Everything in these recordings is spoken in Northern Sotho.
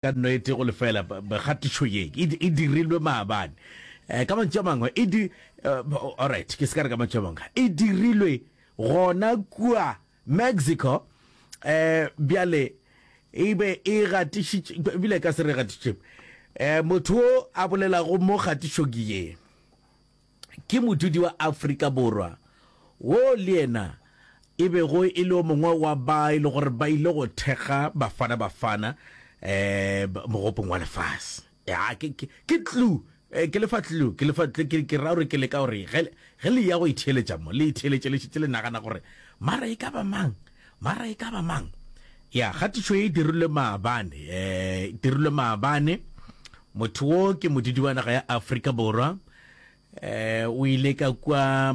Ka nnete, go lefela kgatišo ye e dirilwe maabane. Ka mantšu a mangwe, e di, alright, ke se ka re ka mantšu a mangwe, e dirilwe gona kua Mexico. Bjale e be e gatišitše, bile ka se re gatišitše, motho o a bolelago mo kgatišong ye. ke modudi wa Afrika Borwa wo le yena e bego e le o mongwe wa ba e le gore ba ile go thekga Bafana Bafana um mogopong wa lefase ya ke ke tlu eh, ke lefa tlu ke lefa tlu ke ke ra gore ke leka gore ge ge le ya go itheeletša mo le itheeletše le šetse le nagana gore mara e ka ba mang mara e ka ba mang ya kgatišo e dirilwe maabane um dirilwe maabane Motho wo ke modudi wa naga ya Afrika Borwa. Eh, o ile ka kwa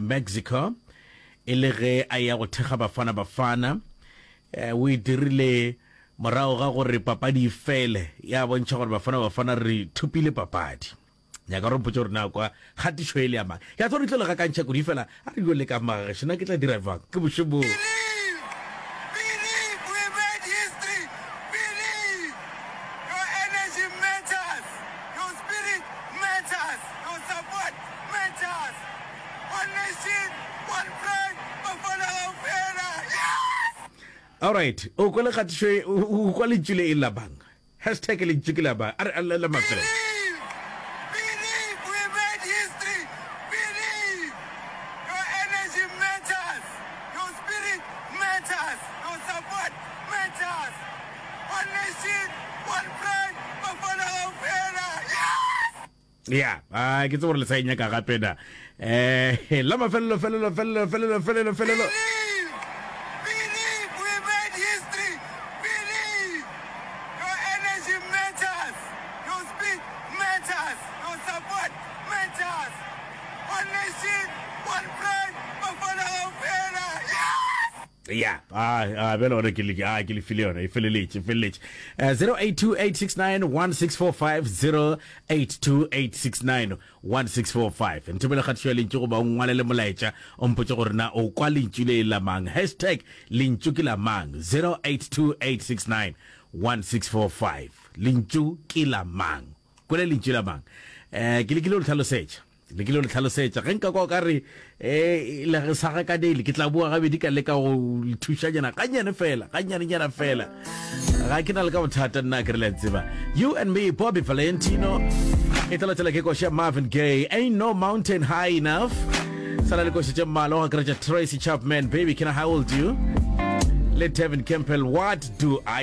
Mexico e le ge a ya go thekga Bafana Bafana. Eh, o e dirile morago ga gore papadi e fele ya bontšha gore Bafana Bafana re thopile papadi. Nyaka gore mpotše gore na kwa kgatišo e le ya mang. Ke a tswa re tlo le gakantšha kudu fela a re yo le ka magagesho na ke tla dira bjang ke boše boo. Alright, o kwa le kgatišo o kwa lentšu le e labang. Hashtag Lentšu ke la ba a re a lla la mafelelo. ya a ke tse gore le sa e nyaka gape na um la mafelelo felelo felelo felelo felelo felelo ya a bjale gona ke le file yona e feleletše feleletše 0828691645 0828691645 nthomele kgatišo ya lentšu goba o ngwalele molaetša o mpotše gore na o kwa lentšu le e lamang hashtag lentšu ke lamang 0828691645 lentšu ke lamang kwele lentšu lamang um ke lekile o le tlhalosetša le ke le le tlhalosetša ge nka kwa o ka re um le sa gakanele ke tla boa gabedi ka leka go le thušanyana gannyane fela gannyanenyana fela ga ke na le ka bothata nna ke re le tseba you and me bobby valentino e tla latela ke koša marvin gay ain't no mountain high enough sala le koša tše mmala go akaretša tracy chapman baby can i hold you le tevin campbell what do i